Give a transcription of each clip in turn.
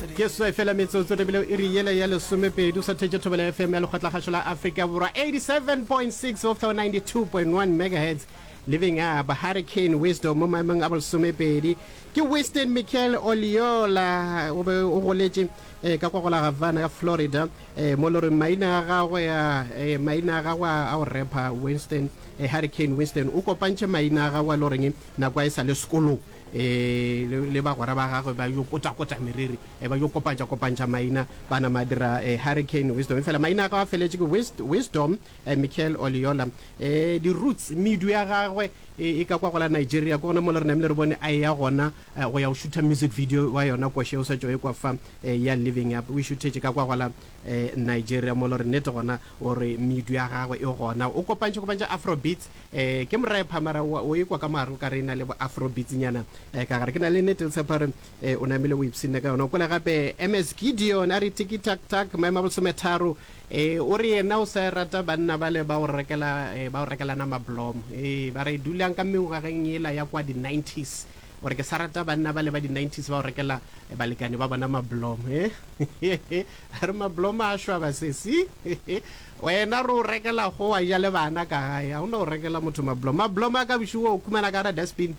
Ke seswai fela metsotso re bile iri yela ya lesomepedi o sa thetše thobela ya FM ya lekgotlakgašo la Afrika Borwa 87.6 go fihla go 92.1 megahertz Living Up Hurricane Wisdom mo maemong a bolesomepedi ke Winston Michael Oliola o be o goletše eh, ka kwa go la Havana ka Florida eh, mo loreng maina a gagwe a eh, maina a gagwe a a o repa Winston eh, Hurricane Winston o kopantše maina a gagwe a loreng nako a e sa le sekolong um le bagwera ba gagwe ba yo kotakota meriri, um ba yo kopantšakopantšha maina, ba nama ba dira um Hurricane Wisdom. Efela maina a gagwe a feletše ke Wist, Wisdom, um Michael Oliola. Um di-roots, medu ya gagwe e e ka kwa go la Nigeria, ke gona mo le re namile re bone a eya gona um go ya go šutha music video wa yona Koshe o sa tšo ekwa fa, um ya Living Up. O e šuthetše ka kwa go la um Nigeria mo le re nnete gona o re medu ya gagwe e gona. O kopantšhakopantšha Afrobeats Ee, ke moraye pha mara wa o ekwa ka mare o ka re e na le bo afrobeatsinyana eh, ka gare. Ke na le nete le tshepa gore eh, o namile o ipsinne ka yona. O kwele gape MS Gideon a re tiki tak tak maema bosometharo eh, o re yena o sa e rata banna bale ba o rekela eh, ba o rekela nama blom eh, ba re dulang ka mengwageng yela ya kwa di 90s o re ke sa rata banna bale ba di 90s ba o rekela eh, balekane ba bona mablom eh. a re mablom a shwa basesi Wena re o rekela go wa ja le bana ka gae, ga o no rekela motho mablomo. Mablomo a kabiši wo o khumana ka gara dustbin.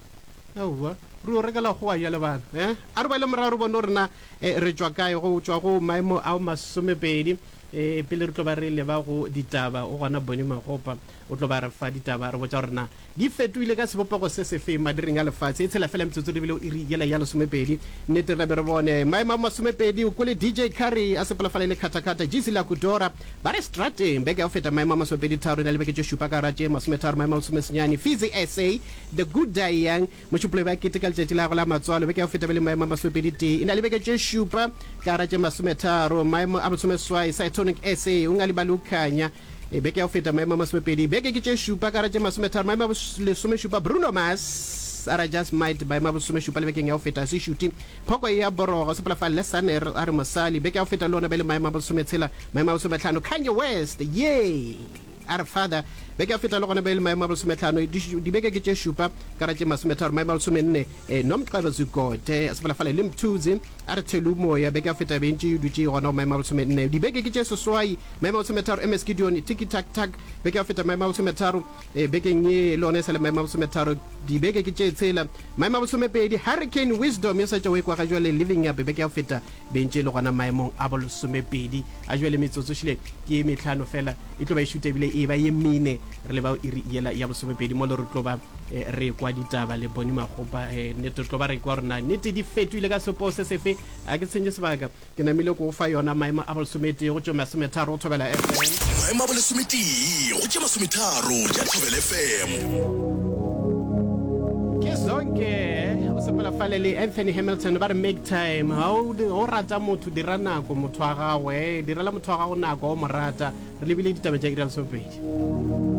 Aowa, re o rekela go wa ja le bana. Eh? A re boele morago re bone gore na eh, re tšwa kae go tšwa go maemo ao masomepedi. Eh, pele re tlo ba re leba go ditaba, o gona Bonnie Magopa o tlo ba re fa ditaba, re botša gore na Di fetohile ka sebopego se sefe madiring a lefase? E tshela fela metsotso di bile o iri yela ya lesomepedi. Nnete re be re bone maemo a masomepedi o kwele DJ Curry a sepela fale le Khatakata, Jeezy le Akudora ba re strateng. Beke ya go feta maemo a masomepedi-tharo e na le beke tše šupa ka gare ga tše masometharo maemo a lesomesenyane. Fizzy SA, The Good Die Young, Mošupologi ba keteka letšatši la gagwe la matswalo beke ya go feta be le maemo a masomepedi-tee e na le beke tše šupa ka gare ga tše masometharo maemo a bolesomeswai. Cytonic SA, Ungali Balukhanya, e beke ya go feta maemo a masomepedi beke ke tše šupa ka ra tše masometharo maemo a lesomešupa Bruno Mars a ra just might maemo a bosomešupa le bekeng ya go feta se šuti phoko ya borogo sepela fa lesaner a re mosali beke ya go feta le ona be le maemo a bosometshela maemo a bosometlhano Kanye West ye a re father beke ya go feta le gona be le maemo a bosometlhano dibeke ke tše šupa ka ra tše masometharo maemo a lesomenne eh, Nomcebo Zikode sepela fa le Limtuzi A re tshelu o moya, beke ya feta be ntše e dutše e gona go maemo a bolesome nne. Dibeke ke tše seswai, maemo a bolesome tharo, MS Gideon, Tiki Tak Tak, beke ya feta maemo a bolesome tharo, e, bekeng ye le gona e sa le maemo a bolesome tharo. Dibeke ke tše tshela, maemo a bolesome pedi, Hurricane Wisdom, yo sa tšwa o ekwa ga jwale, Living Up, beke ya feta be ntše e le gona maemong a bolesome pedi. A jwale metsotso ehlile ke ye mehlano fela, e tlo ba e šuta ebile e eba ye mene re leba go iri yela ya bolesome pedi mo le re tlo ba e, re kwa ditaba le boni magopa e, nnete tlo ba re kwa rona nnete di fetoile ka sepoo se sefe a ke tshenye sebaka ke namile ko fa yona maemo a bolesomete go tšo masometharo go thobela fm maemo a bolesometee go tše masometharo tša thobele fm ke zonke o sepela fale le anthony hamilton ba re make time ga o di- o rata motho dira nako motho wa gago e direla motho wa gago nako o mo rata re lebile ditaba tša iralesopedi